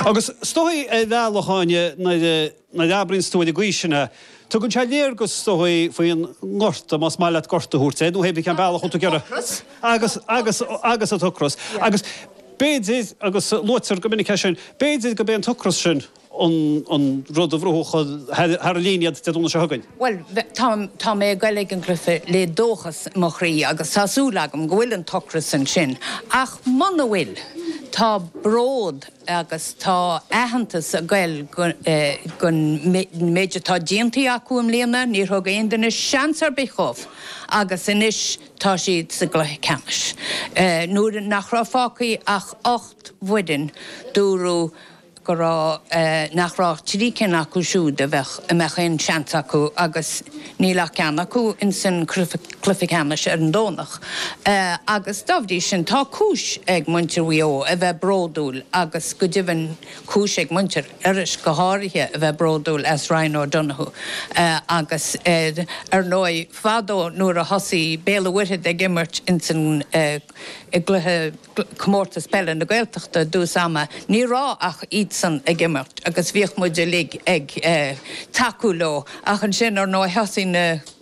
Agus is dóichí, a Mhaoileachlainn, nuair a abraíonns tú ar an gcaoi sin é, tugann sé léargas is dóichí faoin ngorta, más maith leat gorta a thabhairt air, nó hé bith cén bealach a dtugann tú air. Agus, agus, agus, agus an t-ocras. Agus b'fhéidir, agus luaitear go minic é sin, b'fhéidir gurb é an t-ocras sin an an rud a bhrúfas thar an líne iad Dé Domhnaigh seo chugainn. Bhuel, tá, tá mé ag goil ag an gcluiche le dóchas i mo chroí agus tá súil agam go bhfuil an t-ocras ansin ach muna bhfuil, tá. bród agus tá aitheantas ag goil don méid atá déanta acu i mbliana, níor thug aon duine seans ar bith dhóibh agus anois tá siad sa gcluiche ceannais. Nuair nach raibh fágtha ach ocht bhfoireann dúradh go raibh, nach raibh ach trí cinn acu siúd a bheadh, a mbeadh aon seans acu agus, Níl ach ceann acu insan cluiche ceannais ar an Domhnach agus dá bhrí sin tá cúis ag muintir Mhaigh Eo a bheith bródúil agus go deimhin cúis ag muintir Iorrais go háirithe a bheith bródúil as Ryan O'Donoghue agus ar ndóigh fadó nuair a thosaigh Béal a' Mhuirthead ag imirt insan i gcluiche Chomórtas Peile na Gaeltachta i dtús ama, ní raibh ach iadsan ag imirt agus bhíodh muid uilig ag tacú leo ach ansin, ar ndóigh, thosaigh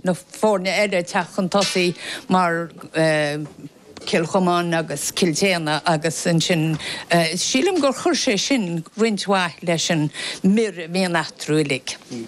na foirne eile ag teacht chun tosaigh mar Cill Chomáin agus Cill tSéadhna agus ansin sílim gur chuir sé sin roinnt mhaith leis an mianach eatarthu uilig.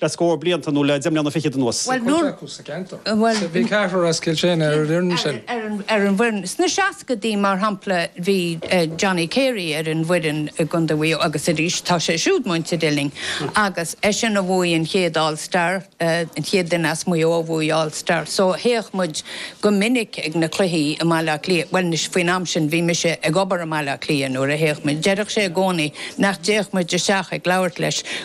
le scór blianta nó le deich mbliana fichead anuas. Bhí cuid acu sa gceantar. Bhí ceathrar as Cill tSéadhna ar an bhfoireann sin. ar an bhfoireann. Sna seascaidí, mar shampla, bhí Johnny Carey ar an bhfoireann i gContae Mhaigh Eo agus arís tá sé siúd muinteartha linn agus eisean a bhuaigh an chéad All Star, an chéad duine as Maigh Eo a bhuaigh All Star. So théadh muid go minic ag na cluichí i mBaile Átha Cliath. Bhuel, anois, faoin am sin bhí mise ag obair i mBaile Átha Cliath nuair a théadh muid. Deireadh sé i gcónaí nach dtéadh muid isteach ag labhairt leis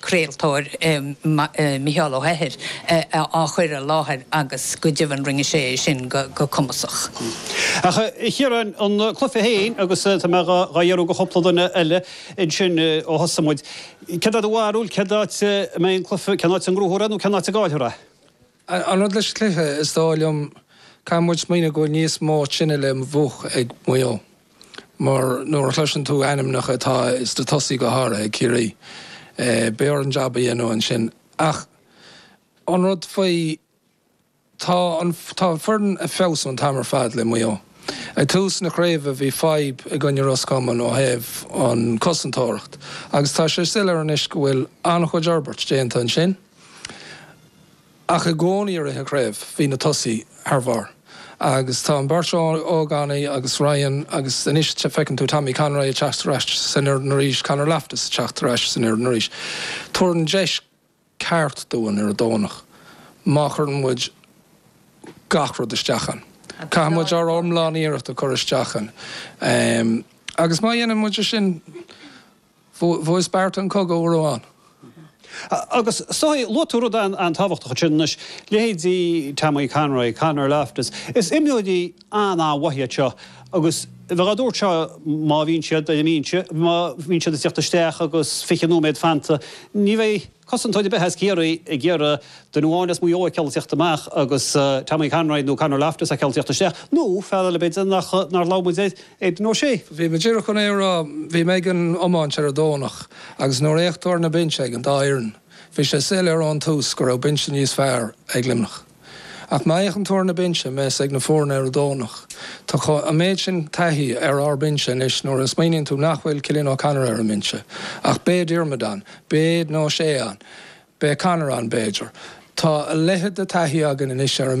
craoltóir, Micheál Ó hEithir, á chur i láthair agus go deimhin rinne sé é sin go cumasach. Ach, a Chiaráin, an cluiche féin, agus tá mé dhá iarraidh de chúpla duine eile ansin ó thosaigh muid, céard é do bharúil, cén áit a mbeidh an cluiche, cén áit a ngnóthófar é nó cén áit a gcaillfear é? An rud leis an gcluiche, is dóigh liom, caithfidh muid smaoineamh go bhfuil níos mó tine le múchadh ag Maigh Eo mar nuair a chloiseann tú ainmneacha atá sna tosaithe go háirithe ag Ciarraí, beidh orainn jab a dhéanamh ansin. Ach an rud faoi, tá an, tá an foireann ag feabhsú an t-am ar fad le Maigh Eo. Ag tús na craoibhe bhí fadhb i gcoinne Ros Comain ó thaobh an cosantóireacht agus tá sé soiléir anois go bhfuil an-chuid fhorbairt déanta ansin. ach i gcónaí i rith an chraobh bhí na tosaithe thar bharr agus tá an bheirt ógánaigh agus Ryan agus anois feiceann tú Tommy Conroy ag teacht ar ais san fhoireann arís, Conor Loftus ag teacht ar ais san fhoireann arís. Tabharann deis ceart dúinn ar an Domhnach má chuireann muid gach rud isteach ann. Caithfidh muid ár lán-iarracht a chur isteach ann agus má dhéanann muid é sin, Bhuaigh Sparta an cogadh, go raibh ann. Agus soithigh, luaigh tú rud an-tábhachtach ansin, anois, leithéidí Tommy Conroy, Conor Loftus, is imreoirí an-mhaith iad seo agus bheadh á dtabhairt seo má bhíonn siad ar an mbinse, má bhíonn siad ag tíocht isteach agus fiche nóiméad fanta, ní bheidh. cosantóir ar bith as Ciarraí ag iarraidh duine amháin as Maigh Eo a fheiceáil ag tíocht amach agus Tommy Conroy nó Conor Loftus a fheiceáil ag tíocht isteach, nó fear eile, b'fhéidir, nár labhair muid air, Aidan O'Shea. Bhí mé díreach chun é a rá, bhí mé ag an iomáint ar an Domhnach agus nuair a fhéach tú ar na binsí ag an dá fhoireann, bhí sé soiléir ón tús go raibh binse níos fearr ag Luimneach. Ach má fhéachann tú ar na binsí, a bheas ag na foirne ar an Domhnach, tá an méid sin taithí ar ár mbinse anois nuair a smaoiníonn tú nach bhfuil Cillian O'Connor ar an mbinse ach beidh Diarmuid ann, beidh O'Shea ann, beidh Conor ann b'fhéidir, tá a leithéid de thaithí againn anois ar an.